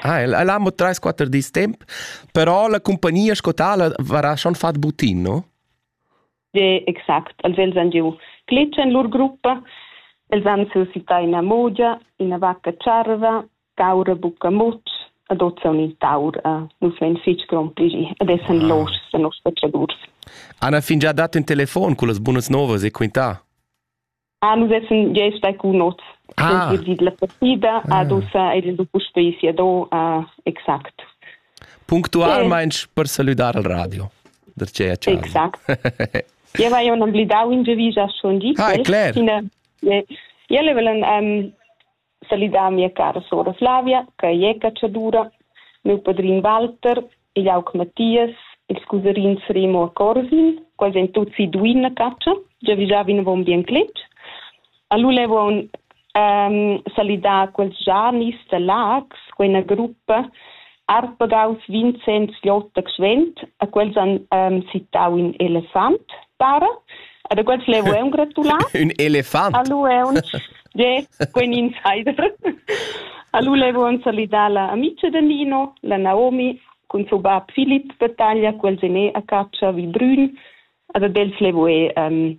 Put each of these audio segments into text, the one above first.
Ah, el, el ha mo 3-4 dis temp, però la compagnia sco tala varà schon fat butin, no? Ja, exact. Els vegn san giu clic en lur gruppa, els han suscità ina mogia, ina vacca tscharva, caura bucca mutsch, ad ozon in taur, uh, nus vein fitg grompligi ed essan ah. loschs da nos pecadurs. Anna fingià dat in telefon con las bunas novas e quintà. Ah, nus essan gest bei cun not. Ah. Vid la partida ah. ad ussa ed il puspei sia do uh, exact. Punctualmein per saludar al radio. Der c'è Exact. Io vai un amblidau in devisa schon di. Ah, è cler. Io le volen um, salidà mia cara sora Flavia, ch'ei è catschadura, miu padrin Walter, igl aug Mattias, ils cusarins Remo e Corsin, quels ein tutti duin a catscha, già vigià vinavon bien cletg. Allora levon ehm, salidar quels Janis da Lax, quei ina gruppa Arpegaus Vincenz Jota Gschwend, a quels han um, citau in elefant, para. Ad quels le voleum gratular. Un elefant. Allu eun. Je, quin insider. Allu le voleum salidar la amica de Nino, la Naomi, cun suo bab Philipp de taglia, quels ne a caccia vi brun. Ad quels le voe um,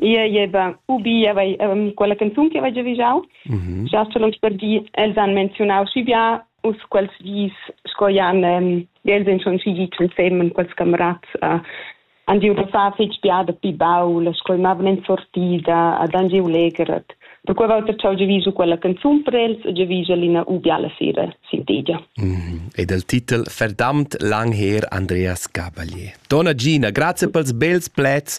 Io jeva ubi aveva quella canzun che aveva giaviggiau. Mm -hmm. Già sco lungs per di els han menzionau schi bia us quels dis sco jan um, els han schon schi giu insem quels camerats uh, han giu passà fetg bia da pi baul, sco mavan en sortida, ad han giu legeret. Per quei volta ciao giavisu quella canzun per els e giavisa lina ubia la sera sintigia. Mm. Ed il titel Verdamt lang her Andreas Gabalier. Donna Gina, grazie pels bels plets